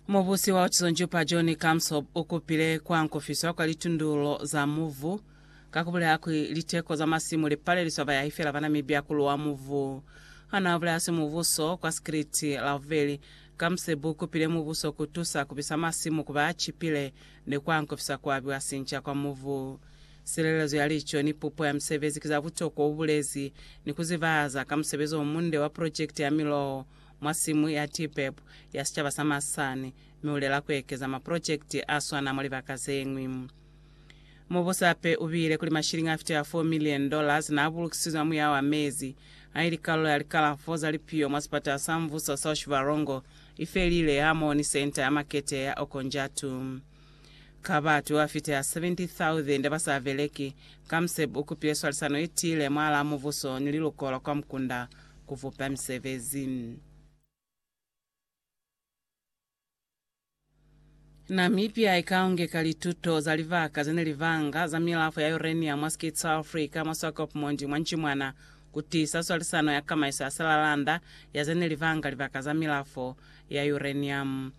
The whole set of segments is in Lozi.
Mubusi wa Otizonjupa John Kamsob u kupile kwa nkofiswa kwa litundululo za muvu ka ku bulela kuli liteko za masimu li paleliswa bayahi fela ba Namibia ku luwa muvu. Ha naa bulela simubuso kwa sikiliti Lauveli, Kamseb u kupile mubuso ku tusa ku bisa masimu ku ba a cipile ni kwa nkofisa ku abiwa sinca kwa muvu. Silelezo ya lico ni pupo ya misebezi ki za butokwa, u bulezi, ni ku zibahaza ka musebezi o munde wa projekiti ya miloho mwa simu ya TPEP ya sicaba sa Masane mi ulela kuekeza maprojekiti aswana mwa libaka zeñwi. Mubusi hape ubile kuli mashilingi afitela 4 million dollars naabulukisizwe muya wa mezi haili kalulo ya likalafo za lipiyo mwa sipatala sa mvuso sa Oshivarongo ifelile hamoni senta ya makete ya Okonjatu. Ka batu ba fita 70,000 ba sa beleki, Kamseb u kupile swalisano ye tiile mwalaa mubuso ni liluko la kwa mukunda ku bupa misebezi. Namibia i ka ungeka lituto za libaka ze ne li banga za milafo ya uranium mwa Skeet sa Africa mwa Swakopmund mwa Ncimwana ku tiisa swalisano ya kamaiso ya silalanda ya ze ne li banga libaka za milafo ya uranium.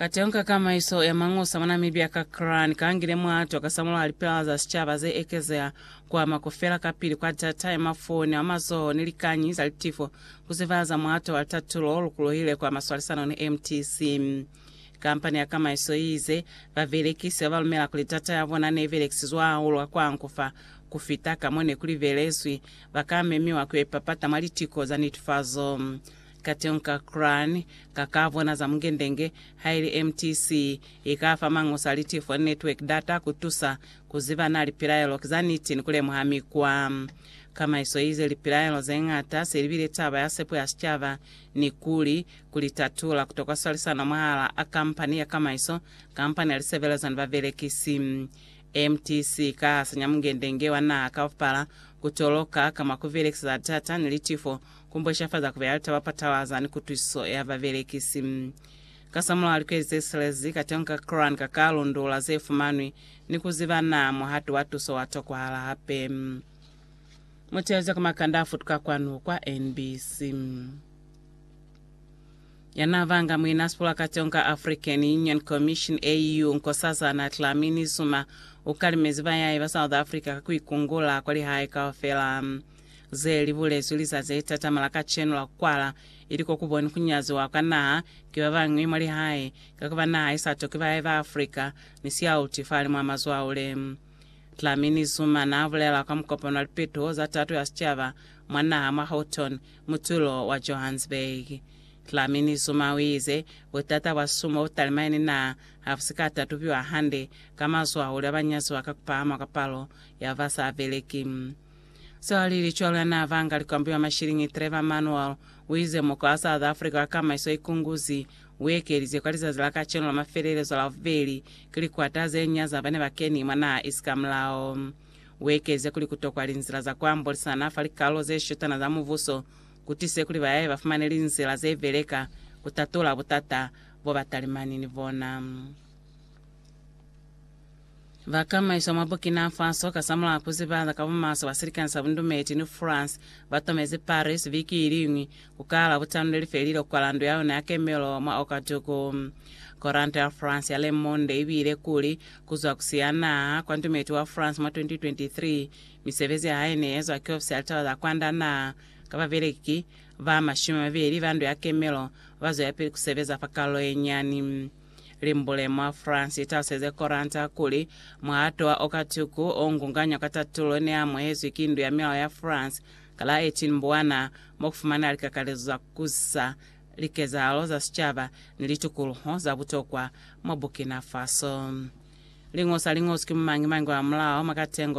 Katonga ka maiso ya mangusa mwa Namibia ka Kran kangile mwato ka samulaho lipela za sicaba ze ekezeha kwa ma kufela kapili kwa data ya mafoni a mazoho ni likanyi za litifo ku zivaza mwato wa litatulo o lukulohile kwa maswalisano ni mtc. Kampani ya kamaiso i ize, Babelekisi ba ba lumela kuli data ya bona ne belekisizwe hahulu ka kwa nkufa ku fita ka mo ne ku libelezwi, ba ka memiwa ku yo ipapata mwa litiko za netefazo. Kateñi ka Qur'an, ka ka bona za Mungendenge, haili MTC i ka fa Mangusa Litifo ni Network data ku tusa ku ziba na lipilaelo ki za niti ni ku lemuha mikwa. Kamaiso i ize lipilaelo ze ñata se li bile taba ya sepo ya sicaba ni kuli, ku li tatula, ku tokwa swalisano mwahal'a a kampani ya kamaiso, kampani ya lisebelezo ni babelekisi. MTC i ka hasanya Mungendenge wa Naha kaufala ku toloka ka mwa ku belekisa za data ni litifo Ku mbweshafaza ku bea litaba patalaza ni kutwisiso ya babelekisi. Kasamulaho likweli ze silezi, ka tonga Quran ka ka lundula ze fumanwi ni ku ziba naa muhatu wa tuso wa tokwahala hape. Mu teeleze ku makanda a futuka kwanu kwa NBC. Ya naa banga muinasipula ka tonga African Union Commission, AU, Nkosazana Dlamini Zuma u kalimezi bayahi ba South Africa ka ku ikungula kwa lihae kaufela. Ze li bulezwi lizazi le tatama la kacenu la ku kwala, ili ko ku boni ku nyaziwa kwa naha ki ba bañwi mwa lihae, ka ku ba naha i sa tokwi bahae ba Africa, ni siauti fali mwa mazwaule. Dlamini Zuma naa bulela kwa mukopano wa lipetuho za tato ya sicaba mwa naha mwa Houghton, mutulo wa Johannesburg. Dlamini Zuma u ize, Butata bwa sumo bu talimai ni naha ha bu si ka tatubiwa hande ka mazwaule a ba nyaziwa ka ku pahama kwa palo ya ba sa beleki. Swali licwalo ya n'a vanga likwambi ba mashiliñi Trevor Manuel u ize mukwa wa South Africa wa kamaiso i kunguzi u ekelize kwa lizazi la kacenu la mafelelezo Lavubeli ki likwata ze nya za ba ne ba keni mwa naha isi ka mulao. U ekelize kuli ku tokwa linzila za ku ambolisana fa likalolo ze shutana za mubuso ku tise kuli bayaye ba fumane linzila ze beleka ku tatula butata bo ba talimani ni bona. Ba kamaiswa mwa Burkina Faso kasamulaho ku zibaza ka bumaswe bwa silikani sa bundumeli ni France, ba tomezi Paris biki iliñwi ku kala butanu le li felile kwa landu ya yona ya kemelo mwa Ouagadougou. Koranta ya France ya Le Monde i buile kuli, Ku zwa ku siya naha kwa ndumeti wa France mwa 2023, misebezi ya hae ne i ezwa ki ofisi ya litaba za kwanda naha, ka babeleki ba mashumi a mabeli ba ndu ya kemelo ba zwelapili ku sebeza fa Karolo ye Nyani. Limbule mwa France italuseze Koranta kuli, Muhato wa Okatuku o ngunganywa ka tatulo neamuhezwi ki Ndu ya Milao ya France ka la 18 Mbwana, mo kufumaneha likakalezo za kukusa likezahalo za sicaba ni litukuluho za butokwa mwa Burkina Faso. Lingosa liñozwi ki mumangi-mangi wa mulao mwa katengo